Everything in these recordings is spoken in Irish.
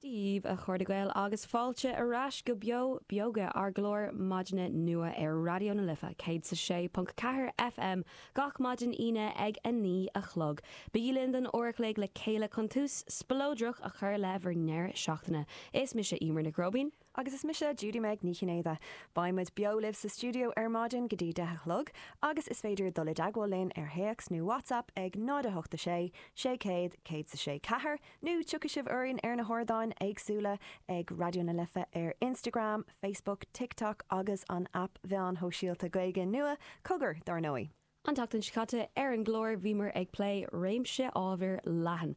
Daoibh, a chairde Gael, agus fáilte ar ais go Beo Beoga, ár gclár maidine nua ar Raidió na Life 106.4 FM gach maidin Aoine ag a naoi a chlog. Bígí linn don uair a chloig le chéile chun tús spleodrach a chur le bhur ndeireadh seachtaine. Is mise Eimear Nic Róibín. Agus is mise Judy-Meg Ní Chinnéide. Beidh muid beo libh sa stiúideo ar maidin go dtí deich a chlog agus is féidir dul i dteagmháil linn ar théacs nó WhatsApp ag 086 600 1064 nó tiocfaidh sibh orainn ar na hardáin éagsúla ag Raidió na Life ar Instagram, Facebook, TikTok agus an aip mheáin shóisialta Gaeilge nua, Cogar, dár ndóigh. An tseachtain seo caite ar an gclár bhíomar ag plé réimse ábhar leathan.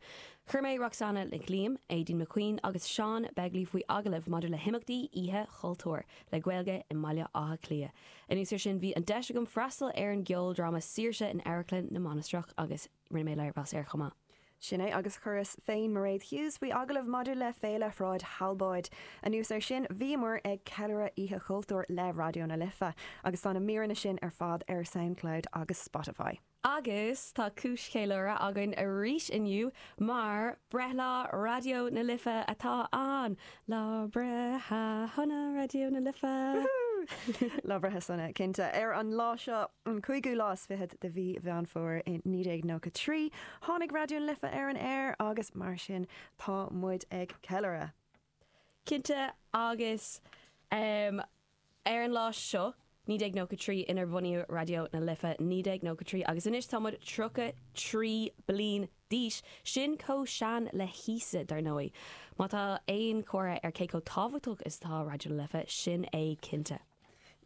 Chuir mé Roxanna Nic Liam, Aideen McQueen agus Seán Begley faoi agallamh maidir le himeachtaí Oíche Chultúir le Gaeilge i mBaile Átha Cliath. Anuas ar sin bhí an deis agam freastal ar an gceoldráma Saoirse in Amharclann na Mainistreach agus. Rinne mé léirmheas air chomh maith. Sin é, agus chuireas féin Mairéad Hughes faoi agallamh maidir le Féile Shráid Thalbóid. Anuas air sin, bhíomar ag ceiliúradh Oíche Chultúir le Raidió na Life, agus tá na míreanna sin ar fad ar Soundcloud agus Spotify. Agus tá cúis cheiliúrtha againn arís inniu, mar breithlá Raidió na Life atá ann! Lá breithe shona Raidió na Life! Wúhú! Lá breithe sona, cinnte. Ar an lá seo, an cúigiú lá is fichead de mhí Mheán Fómhair i 1993, tháinig Raidió na Life ar an aer agus mar sin tá muid ag ceiliúradh. Cinnte agus Ar an lá seo, 1993, inar bunaíodh Raidió na Life, 1993, agus anois tá muid tríocha trí bliain d'aois, sin chomh sean le hÍosa, dar ndóigh. Má tá aon chomhartha ar cé chomh tábhachtach is atá Raidió na Life, sin é cinnte.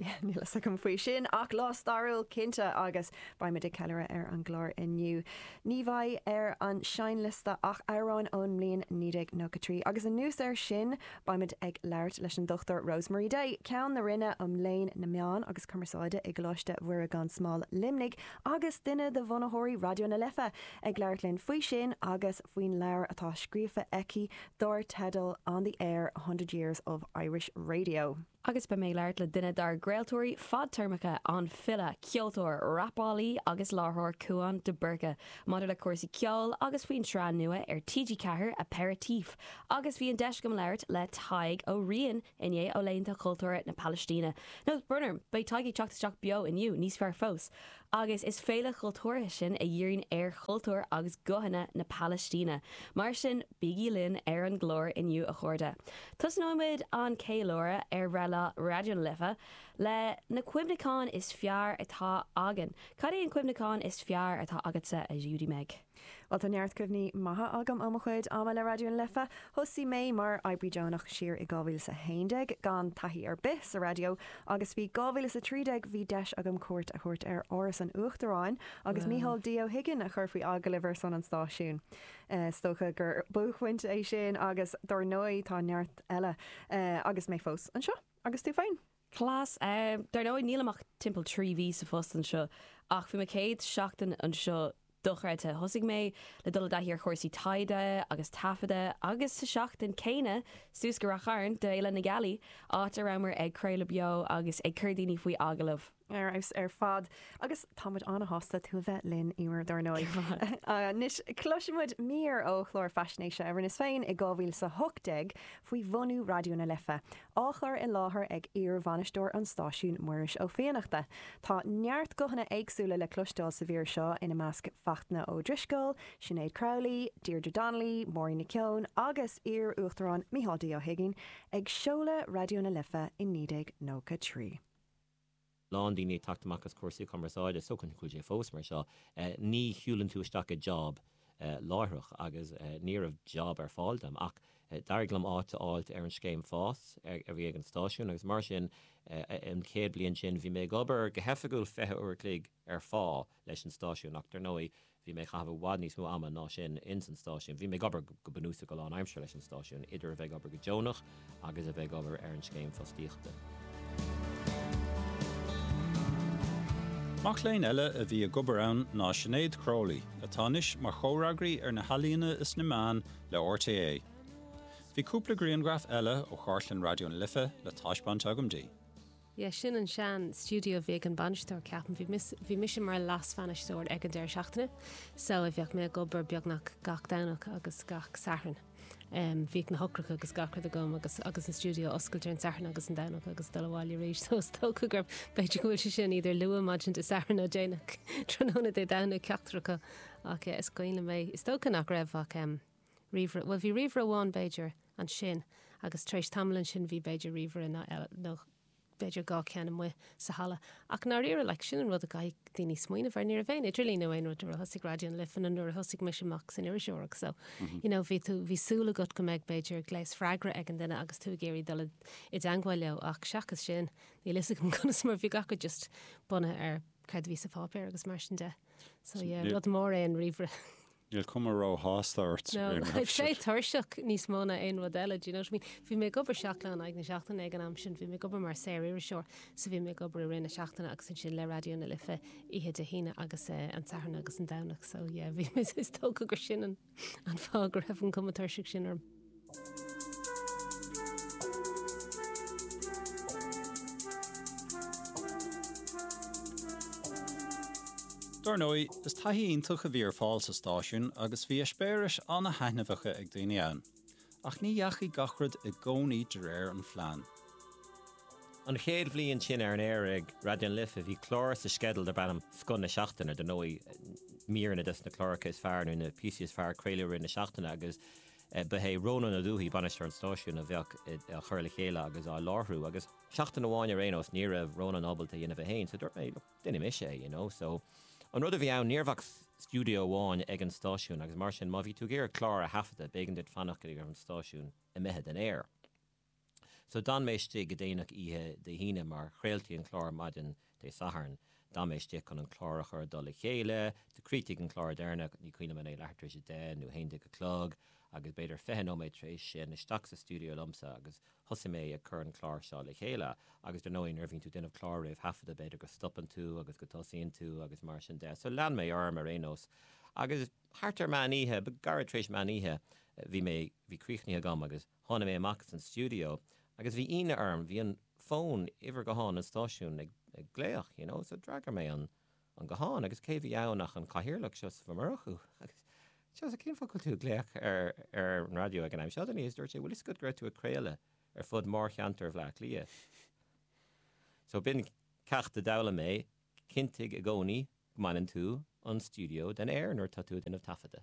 Níl a fhios agam faoi sin, ach lá stairiúil cinnte, agus beidh muid ag ceiliúradh ar an gclár inniu. Ní bheidh ar an seinnliosta ach amhráin ón mbliain 1993, agus anuas air sin, Beimid ag labhairt leis an Dr Rosemary Day, Ceann na Roinne um Léann na Meán agus Cumarsáide i gColáiste Mhuire gan Smál, Luimnigh, agus duine de bhunaitheoirí Raidió na Life, ag labhairt linn faoi sin agus faoin leabhar atá scríofa aici dár teideal On the Air, A Hundred Years of Irish Radio. agus beidh mé ag labhairt le duine dár gcraoltóirí fadtéarmacha, an file, ceoltóir, rapálaí agus láithreoir Cúán de Búrca, maidir le cúrsaí ceoil agus faoin tsraith nua ar TG4, Aperitif, agus bhí an deis agam labhairt le Tadhg Ó Riain inné ó laethanta cultúrtha na Palaistíne. Nó, brón orm, beidh Tadhg ag teacht isteach beo inniu, níos fearr fós! agus is féile chultúrtha sin a dhíríonn ar chultúr agus guthanna na Palaistíne. Mar sin, bígí linn ar an gclár inniu a chairde. Tosnóimid an ceiliúradh ar bhreithlá Raidió na Life le na cuimhneacháin is fearr atá againn. Cad é an cuimhneachán is fearr atá agatsa, a Judy-Meg? Bhuel, tá neart cuimhní maithe agam ó mo chuid ama le Raidió na Life. Thosaigh mé mar oibrí deonach siar i 2011, gan taithí ar bith sa raidió, agus faoi 2013 bhí deis agam cuairt a thabhairt ar Áras an Uachtaráin agus Micheál D. Ó hUiginn a chur faoi agallamh ar son an stáisiúin. Is dócha gur buaicphointe é sin agus dar ndóigh tá neart eile agus mé fós anseo, agus tú féin? Cleas. Dar ndóigh, nílim ach timpeall trí mhí sa phost anseo, ach bhí mo chéad seachtain anseo, dochreidthe, thosaigh mé le dul i dtaithí ar chúrsaí taighde agus taifeada, agus sa seachtain céanna, suas go Rath Chairn d'Fhéile na Gealaí, áit a rabhamar ag craoladh beo agus ag cur daoine faoi agallamh. Ar fheabhas ar fad, agus táimid an-sásta tú a bheith linn, Emer, dar ndóigh. Anois, cloisfimid mír ó chlár faisnéise a rinneas féin i 2018 faoi bhunú Raidió na Life, á chur i láthair ag iarbhainisteoir an stáisiúin, Muiris Ó Fiannachta. Tá neart guthanna éagsúla le cloisteáil sa mhír seo, ina measc Fachtna Ó Drisceoil, Sinéad Crowley, Deirdre Donnelly, Máirín Nic Eoin agus iar-Uachtarán Micheál D. Ó hUiginn ag seoladh Raidió na Life i 1993. lán daoine ag teacht amach as cúrsaí cumarsáide, is dócha go bhfuil sé fós mar seo, ní shiúlann tú isteach i job láithreach agus ní raibh job ar fáil dom ach d'éirigh liom áit a fháilt ar an scéim fás a bhí ag an stáisiún agus mar sin an chéad bliain sin bhí mé ag obair go hoifigiúil 20 uair a chloig ar phá leis an stáisiún, ach dar ndóigh bhí mé ag caitheamh i bhfad níos mó ama ná sin ins an stáisiún. Bhí mé ag obair go bunúsach go lánaimseartha leis an stáisiún, idir a bheith ag obair go deonach agus a bheith ag obair ar an scéim fostaíochta. Mac léinn eile a bhí ag obair ann ná Sinéad Crowley, atá anois mar chomhfhreagraí ar na healaíona is na meáin le RTÉ. Bhí cúpla grianghraf eile ó chartlann Raidió na Life le taispeáint agam di. Ie, sin an sean stiúideo a bhí ag an bainisteoir, ceapaim. Bhí miss, bhí mise mar leas-bhainisteoir ag an deireadh seachtaine, so a bheadh mé ag obair beagnach gach Domhnach agus gach Satharn. Em, bhíodh na heochracha agus gach rud agam agus, agus an stiúideo oscailte ar an Satharn agus an Domhnach agus dul abhaile arís, so is dócha gurb, b'fhéidir go bhfuil sé sin either luath maidin Dé Sathairn nó déanach tráthnóna Dé Domhnaigh, ceachtar acu. Ach ie, is cuimhin liom é. Is dócha nach raibh ach, em, ríomhaire, bhuel bhí ríomhaire amháin b'fhéidir ansin agus tar éis tamaill ansin bhí b'fhéidir ríomhaire eile nó b'fhéidir dhá cheann amuigh sa halla ach ndáiríre like sin an rud a gcaithfidh daoine smaoineamh ar, ní raibh aon idirlíon nó aon rud nuair a thosaigh Raidió na Life nó nuair a thosaigh mise amach san iriseoireacht so you know bhí tú, bhí súil agat go mbeadh b'fhéidir gléas freagra ag an duine agus tú ag iarraidh dul i dteangmháil leo ach seachas sin níl 'fhios agam conas mar bhí gach rud just bunaithe ar céard a bhí sa pháipéar agus mar sin de so yeah rud mór é an ríomhaire. Níl cuma róshásta ort sa ghrianghraf sin. Bhí mé tuirseach níos mó ná aon rud eile, do you know what I mean? Bhí mé ag obair seacht lá in aghaidh na seachtaine ag an am sin, bhí mé ag obair mar saoririseoir, so bhí mé ag obair i rith na seachtaine agus ansin le Raidió na Life oíche Dé hAoine agus an Satharn agus an Domhnach, so yeah, bhí mé, is dócha gur sin an fáth go raibh an cuma tuirseach sin orm. Dar ndóigh, is taithí iontach a bhí ar fáil sa stáisiún agus bhí eispéiris an-thaitneamhacha ag daoine ann. Ach ní dheachaigh gach rud i gcónaí de réir an phlean. An chéad bhliain sin ar an aer ag Raidió na Life bhí clár sa sceideal darb ainm 'Scoth na Seachtaine'. Dar ndóigh, míreanna des na cláracha is fearr nó na píosaí is fearr a craoladh i rith na seachtaine agus. Ba é Rónán Ó Dubhthaigh bainisteoir an stáisiúin a bheadh á chur le chéile agus á láithriú agus seachtain amháin ar aon nós ní raibh Rónán ábalta é a dhéanamh é féin so dúirt mé look déanfaidh mise é you know so an rud a bhí ann ní raibh ach stiúideo amháin ag an stáisiún agus mar sin má bhí tú ag iarraidh clár a thaifeadadh b'éigean duit fanacht go dtí go raibh an stáisiún imithe den aer. So d'fhan mé istigh go déanach oíche Dé hAoine, mar chraoltaí an clár maidin Dé Sathairn. D'fhan mé istigh chun an clár a chur i dtoll a chéile. Do chríochnaigh an clár deireanach, ní cuimhin liom an é leathuair tar éis a deich nó a haon déag a chlog, agus b'fhéidir fiche nóiméad tar éis sin, isteach sa stiúideo liomsa agus thosaigh mé ag cur an clár seo le chéile. Agus dar ndóigh, nuair a bhíonn tú ag déanamh clár réamhthaifeadta, b'fhéidir go stopann tú agus go dtosaíonn tú agus mar sin de. So lean mé orm ar aon nós agus thart ar meán oíche, nó gairid tar éis meán oíche, bhí mé, bhí críochnaithe agam agus. Tháinig mé amach as an stiúideo agus bhí ionadh orm, bhí an fón, uimhir ghutháin an stáisiúin, ag glaoch, you know, so d'fhreagair mé an guthán agus cé bhí ann ach an cathaoirleach, Seosamh Ó Murchú, agus Seosamh, cén fáth go bhfuil tú ag glaoch ar an raidió ag an am seo, agus dúirt sé, bhfuil a fhios agat go raibh tú ag craoladh ar fud mhórcheantar Bhleá Cliath. So b'in ceacht a d'fhoghlaim mé, cinntigh i gcónaí go mbaineann tú an stiúideo den aer nuair atá tú ag déanamh taifeadta.